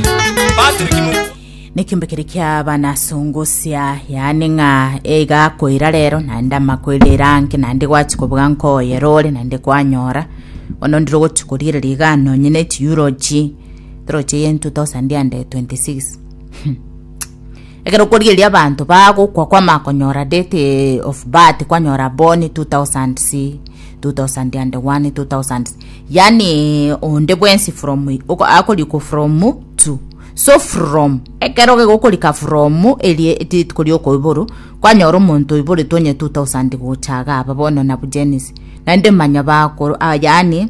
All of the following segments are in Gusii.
Patrick Mugo. Nekembe kere kia bana songosia yaani ng'a eiga koira rero naende amakoira erange naende gwachi kobuga nkoye rore naende kwanyora bono ndire gochi koriereria iga nonye ne chiurochi chirochi eye 2026 Ekero okorigereria abanto bagokwa kwamakonyora date of birth kwanyora born 2000 2001 2000 yaani onde bwensi from akorikwa from to so from ekero gegokorika from erie rituko rioka oiboru kwanyora omonto oiboretwe onye 2000 gocha iga aba bono nabu Janice naende manya bakoro yaani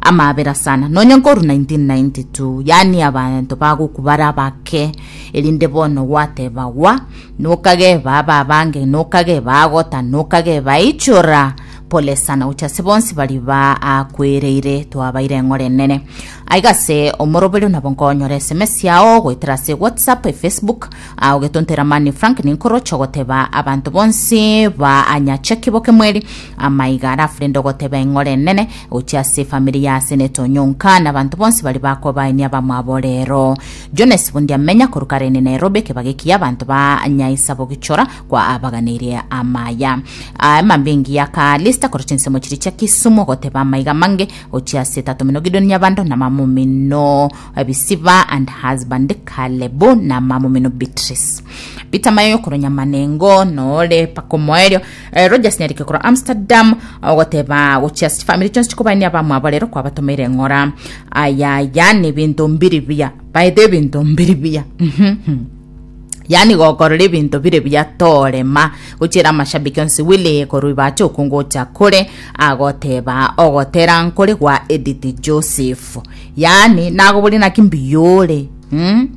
amabera sana nonye nkorwa 1992 yaani abanto bagokwa bare abake. Erinde bono gwatebagwa, Nokageba ababange, nokageba agota, nokageba aichora, pole sana, gocha ase bonsi baria baakwereire, twabaire eng'ora enene. Aiga ase omoroberio nabo nkonyora SMS yao goetera ase WhatsApp, Facebook, ah, ogetontera mani Frank ninkoroche ogoteba abanto bonsi baanyache kiboke mweri, amaiga arafu rende ogoteba eng'ora enene gocha ase efamiri ya Senator Onyonka na abanto bonsi baria bakobaenia abamwabo rero. Jones bondi amenya korwa kare inde Nairobi ekebaga eki abanto ba nyaisa bogichora kwa abaganeirie amaya a emambia engiya ka lista korwa chinsemo chiria chia Kisumu goteba amaiga amange ochia ase etato mino Gideon Nyabando na mama omino Ebisiba and husband Kalebu na mama omino Beatrice Peter Mayoyo korwa Nyamanengo nore paka omoerio Eh, Rogers Nyarike korwa Amsterdam ogoteba gochia family chionsi chikobania abamwabo rero kwabatomeire eng'ora ayaya ni binto mbiri biya baete ebinto mbiri biya mhm yani gokorora ebinto bire biya torema gochera amashabiki onsi wili korwa ibache okungocha kore agoteba ogotera nkore gwa edit joseph yani nagobori naki mbiyore mm?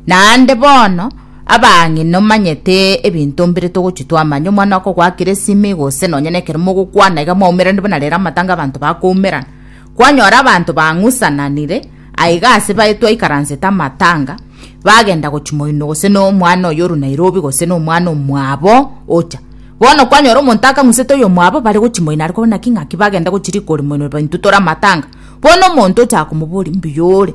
Naende bono, abang'ina nomanyete ebinto mbire togochia twamanya omwana okogwa akire esimi, gose nonya nekero mogokwana iga mwaumeranirie buna rero amatanga abanto bakoumerana. Kwanyora abanto bang'usananire aiga ase baye twaikaransete amatanga, bagenda gochia moino gose nomwana oyo orwe Nairobi gose nomwana omwabo ocha. Bono kwanyora omonto akang'usete oyomwabo bare gochia moino are kobuna ki ng'aki bagenda gochia riko ore moino intwe tore amatanga. Bono omonto ochaka komoboria mbuya ore.